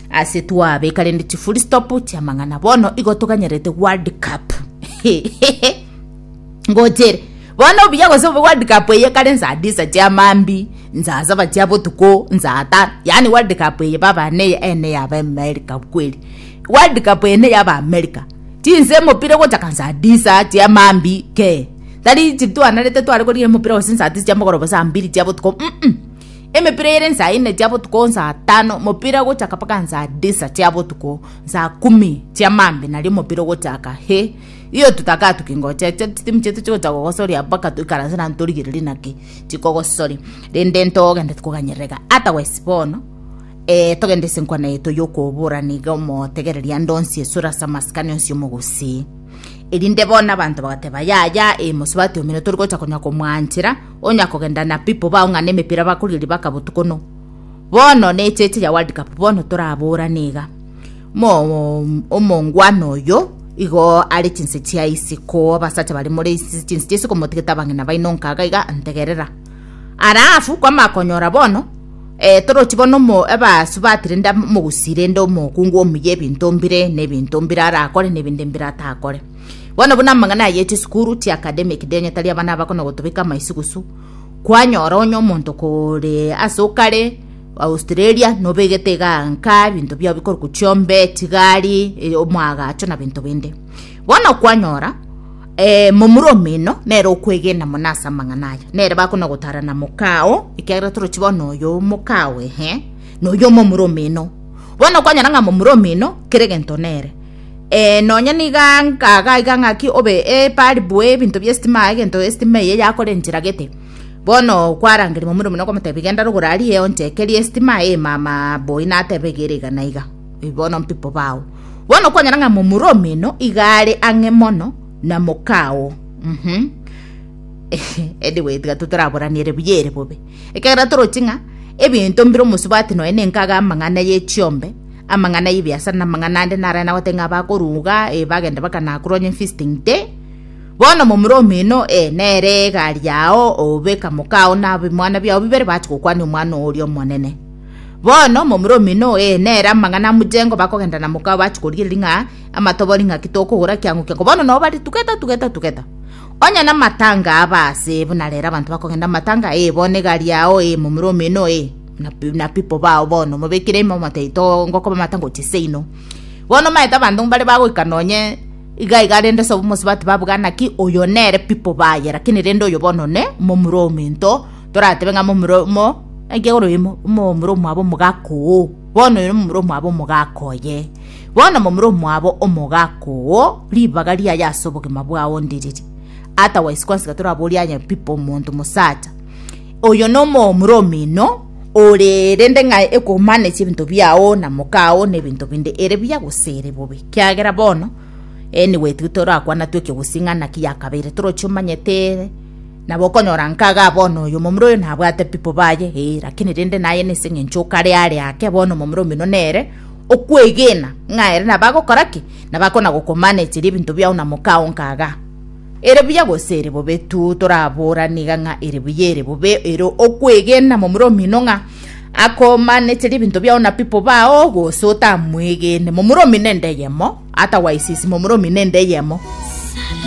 ase twabeka rende chi full stop chia mang'ana bono igo toganyerete world cup ngochere bono obuya gose obe world cup eye kare nsaa disa chia mambi nsaa saba chia botuko nsaa tano yaani world cup eye baba ne ene yaba america kweri world cup eye ne yaba america chinsa emopira egochaka nsaa disa chia mambi kee tari chitwanarete tware korigia emopira gose nsaa tisa chia mogoroba saa mbiri chia botuko mm, -mm. Emepira eyere nsaa ine chia botuko, nsaa tano mopira ogochaka mpaka nsaa disa chia botuko, nsaa kumi chia maambi nario mopira ogochaka. He, iyo totakatuki ngocha echo chitimu chiaito chigocha gogosoria mpaka toikaranse naende torigererie naki chikogosoria. Rende ntogende tikoganyerera iga. Otherwise bono, eh, togende ase enkwana yaito yokoborana iga omotegereri ande onsi esore ase amasikani onsi omogusii. Erinde bono abanto bagateba, Yaya, eh, mosubati omino torigocha konya komwanchera, onya kogenda na pipo baong'ane emepira bakoria ribaka botuko no bono ne echeche ya world cup bono toraborane iga mo omongwana oyo igo are chinse chia isiko abasacha bare more isi- chinse chia isiko motigete abang'ina baino nkaga iga ntegerera alafu kwama konyora bono eh, torochi bono omo ebasu batire nda mogusire nde omokungu omuya ebinto mbire ne ebinto mbire arakore ne ebinde mbire atakore Bono buna amang'ana aya echisukuru chia academic denyo tari abana aba kono gotobeka amaisugusu, kwanyora onye omonto kore ase okare Australia nobegete iga nka binto biao bikorokwa chiombe, chigari, e, omwagacho na binto binde. Bono kwanyora eh, momura omino nere okwegena muna ase amang'ana aya nere bakona gotarana mokao ekiagera torochi bono oyo omokao ehe na oyo omomura omino bono kwanyora ng'a momura omino kera egento nere Ee, nonya nigo ngagaiga ng'aki obe ebari bwe ebinto bi'esitima, egento esitima eye yakorenchera gete. Bono kwarangeria momura omino okomotebi genda rogora arie onchekerie esitima ee mama boi natebe iga ere iga na iga. Ee, bono mpipo bao. Bono kwanyora ng'a momura omino iga are ang'e mono na mokao. Mhm. anyway tiga totoraboraniere buya ere bobe. Ekiagera torochi ng'a ebinto mbire omosubati nonya nenkaga amang'ana ye chiombe, Amang'ana y'ebiasara na amang'ana ande narae nagote ng'a abakoruga e bagenda bakanakura onye feasting day. Bono momura omino e nere egari yao obe kamokao na abimwana biao bibere bache gokwania omwana oria omonene. Bono momura omino e nere amang'ana amuchengo bakogenda na mokao bache korigereria ng'a amatobori ng'aki tokogora kiang'o kiango bono nao bare tugeta tugeta tugeta onye na matanga aba ase buna rero abanto bakogenda matanga e bono egari yao e momura omino e na people bao bono mobekire ime omotaito oo ngokobamata gochia seino bono omanyete abanto mbare bagoika nonye iga iga rende sobo omosubati babuga naki oyo nere people baye lakini rende oyo bono ne momura omento toratebe ng'a momura mo enki egoro imo momura omwabo omogaka oo bono oyo momura omwabo omogaka oye bono momura omwabo omogaka oo ribaga riaye ase obogima bwao ndiriri otherwise kwasi tiga toraborie aye people omonto mosacha Oyo nomomura omino, ore rende ng'ae ekomanesia ebinto biao na mokao na ebinto binde, ere buya gose ere bobe. Kiagera bono eh, nigo etigete orakwana twe ekegusii ng'a naki yakabeire toroche omanyete ere, nabo okonyora nkagaa bono oyo omomura oyo nabwate people baye eh, lakini rende naye nese ng'encho okare are ake bono omomura omino nere okwegena ng'a ere nabo agokora ki, nabo akona gokomanecheria ebinto biao na mokao nkagaa. Ere buya gose ere bobe tu, torabora niga ng'a ere buya ere bobe, ere okwegena momura omino ng'a akomanete ribinto biao na pipo bao, gose otamwegene momura omino ende eyemo, atagwaisisi momura omino ende eyemo.